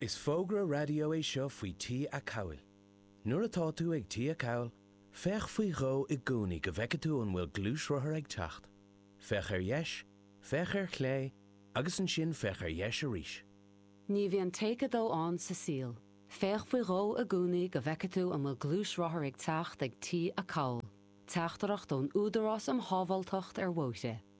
Is fógra raidió é seo faoi T-acomhail. Nuair atá tú ag T-acomhal, féach faoi dhó i gcónaí go bhfeice tú an bhfuil gluaisrothar ag teacht. Féach ar dheis, féach ar chlé agus ansin féach ar dheis arís. Ní bhíonn Take 2 ann sa saol. Féach faoi dhó i gcónaí go bhfeice tú an bhfuil gluaisrothar ag teacht ag T-acomhal. Teachtaireacht ón Údarás um Shábháilteacht ar Bhóithre.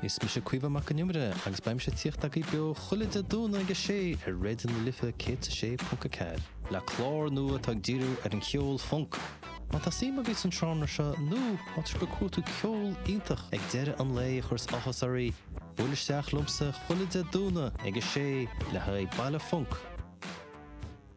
Is mise Caoimhe Mac an Iomaire agus beidh mise ag tíocht agaibh beo chuile Dé Domhnaigh ag a sé ar Raidió na Life 106.4, le clár nua atá ag díriú ar an cheol func. Má tá suim agaibh san seánra seo nó má tá sibh ag cuartú ceol iontach ag deireadh an lae a chuireas áthas oraibh, buail isteach liomsa chuile Dé Domhnaigh ag a sé le haghaidh Baile Func.